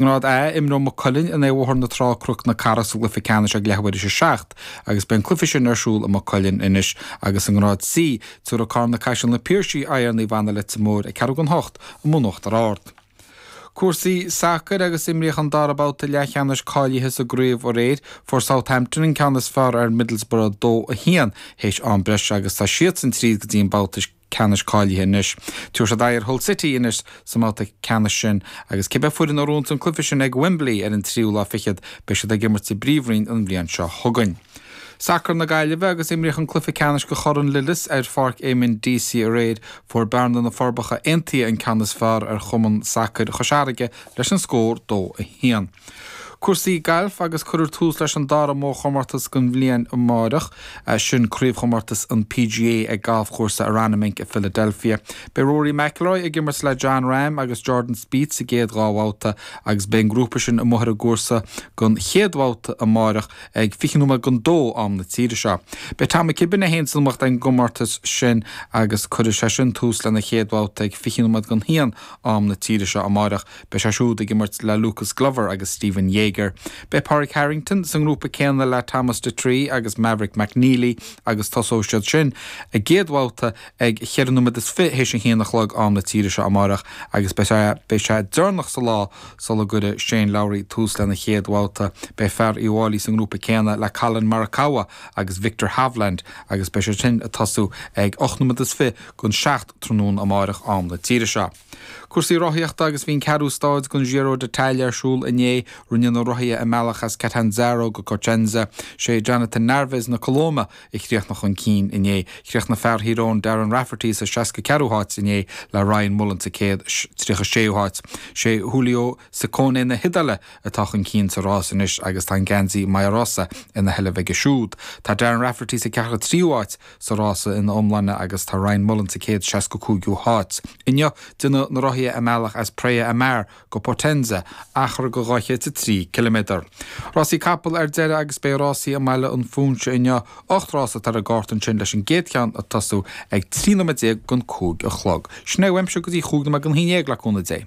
ngrád A, imreoidh Maigh Cuilinn in aghaidh Bhóthar na Trá Cnoc na Cathrach sa gcluife ceannais ag leathuair théis a seacht agus beidh an cluife sin ar siúl i Maigh Cuilinn anois agus i ngrád C, tabharfaidh Carna Caiseal na Piarsaigh aghaidh ar Naomh Anna Leitir Móir ag ceathrú don hocht amuigh in Uachtar Ard. Cúrsaí sacair agus imríodh an dara babhta leathcheannais cáilithe sa gcraobh aréir. Fuair Southampton an ceann is fearr ar Middlesbrough 2, 1 théis am breise agus tá siadsan tríd go dtí an babhta ceannais cáilithe anois. Tabharfaidh siad aghaidh ar Hull City anois sa mbabhta ceannais sin agus cibé foireann a ghnóthaíonn an cluiche sin ag Wembley ar an tríú lá fichead, beidh siad ag imirt sa bpríomhroinn an bhliain seo chugainn. Sacar na Gaillimhe, Agus imríodh an cluiche ceannais do Chorn Lillis ar Pháirc Eamonn Deacy aréir, fuair Bearna, Na Forbacha Aontaithe an ceann is fearr ar Chumann Sacair Chois Fharraige leis an scór 2, 1. Cúrsaí gailf agus cuirfear tús leis an dara mórchomórtas den bhliain amárach, sin craobhchomórtas an PGA ag galfchúrsa Aronimink i Philadelphia. Beidh Rory McIlroy ag imirt le Jon Rahm agus Jordan Spieth sa gcéad dhá bhabhta agus beidh an grúpa sin amuigh ar an gcúrsa don chéad bhabhta amárach ag fiche nóiméad don dó, am na tíre seo. Beidh Tom McKibbin é féin san iomaíocht ag an gcomórtas sin agus cuirfidh sé sin tús lena chéad bhabhta ag fiche nóiméad don haon, am na tíre seo, amárach. Beidh sé siúd ag imirt le Lucas Glover agus Stephan Jaeger. Beidh Pádraig Harrington sa ngrúpa céanna le Thomas Detry agus Maverick McNealy agus tosóidh siad sin a gcéad bhabhta ag ceithre nóiméad is fiche théis a haon a chlog am na tíre seo amáireach agus beidh sé deireanach sa lá sula gcuirfidh Shane Lowry tús lena chéad bhabhta. Beidh fear Uíbh Fháilí sa ngrúpa céanna le Collin Morikawa agus Viktor Hovland agus beidh siad sin ag tosú ag ocht nóiméad is fiche don seacht tráthnóna amáireach am na tíre seo. Cúrsaí rothaíochta agus bhí an ceathrú stáid den Giro d'Italia ar siúl inné. Rinne na rothaithe a mbealach as Catanzaro go Cosenza. Sé Jhonatan Narváez na Colóime a chríochnaigh chun cinn inné. Chríochnaigh fear Thír Eoghain Darren Rafferty sa seasca ceathrú háit inné le Ryan Mullen sa céad tríocha séú háit. Sé Giulio Ciccone na hIodáile atá chun cinn sa rás anois agus tá an geansaí Maglia Rosa ina sheilbh aige siúd. Tá Darren Rafferty sa ceathracha tríú háit. sa rás ina iomláine agus tá Ryan Mullen sa 165ú háit. Inniu, déanfaidh na rothaithe a mbealach as Praia a Mare go Potenza, achar de 203 ciliméadar. Rásaí capall ar deireadh agus beidh rásaí i mBaile an Phúinse inniu, ocht rás atá ar an gcárta ansin leis an gcéad cheann ag tosú ag 13 nóiméad don cúig a chlog. Sin é uaimse go dtí chúig nóiméad don haon déag le cúnamh Dé.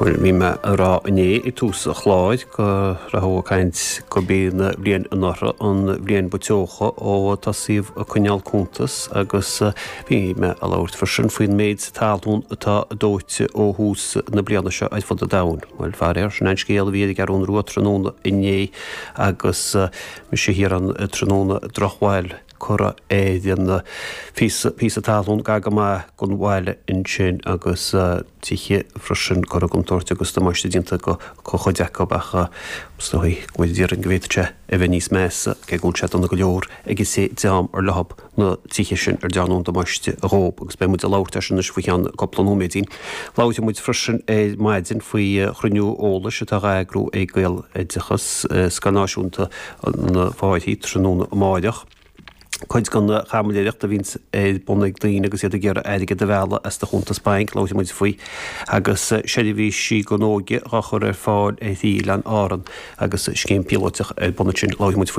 Bhuel, bhí mé ag rá inné ag tús an chláir go rabhthas ag caint gurb í an bhliain anuraidh an bhliain ba teocha ó tosaíodh ag coinneáil cuntas agus bhí mé ag labhairt freisin faoin méid talún atá dóite ó thús na bliana seo ar fud an domhain. Bhuel, faraor, sin an scéal a bhí ar an gCeathrú Rua tráthnóna inné agus mise thiar ann tráthnóna drochbhail. cuireadh an-phíosa talún gar go maith don bhaile ansin agus tithe freisin, curtha i gcontúirt agus damáiste déanta go cuid acu ach is dóigh go bhfuil, idir an dá linn, go bhféadfadh sé a bheith níos measa, cé go bhfuil sé dona go leor ag an té ar leo na tithe sin ar dearnadh an damáiste dhób agus beidh muid ag labhairt air sin anois faoi cheann cúpla nóiméidín. Labhair muid freisin ar maidin faoi chruinniú eolais atá dhá eagrú ag Gaeloideachas, Scoil Náisiúnta na Fairche tráthnóna amáireach. Cuid den chaimiléireacht a bhíonns ar bun ag daoine agus iad ag iarraidh airgead a mhealladh as do chuntas bainc, labhair muid faoi, agus seirbhísí don óige dá gcur ar fáil ar Oileáin Árann agus scéim píolóiteach ar bun ansin, labhair muid faoi.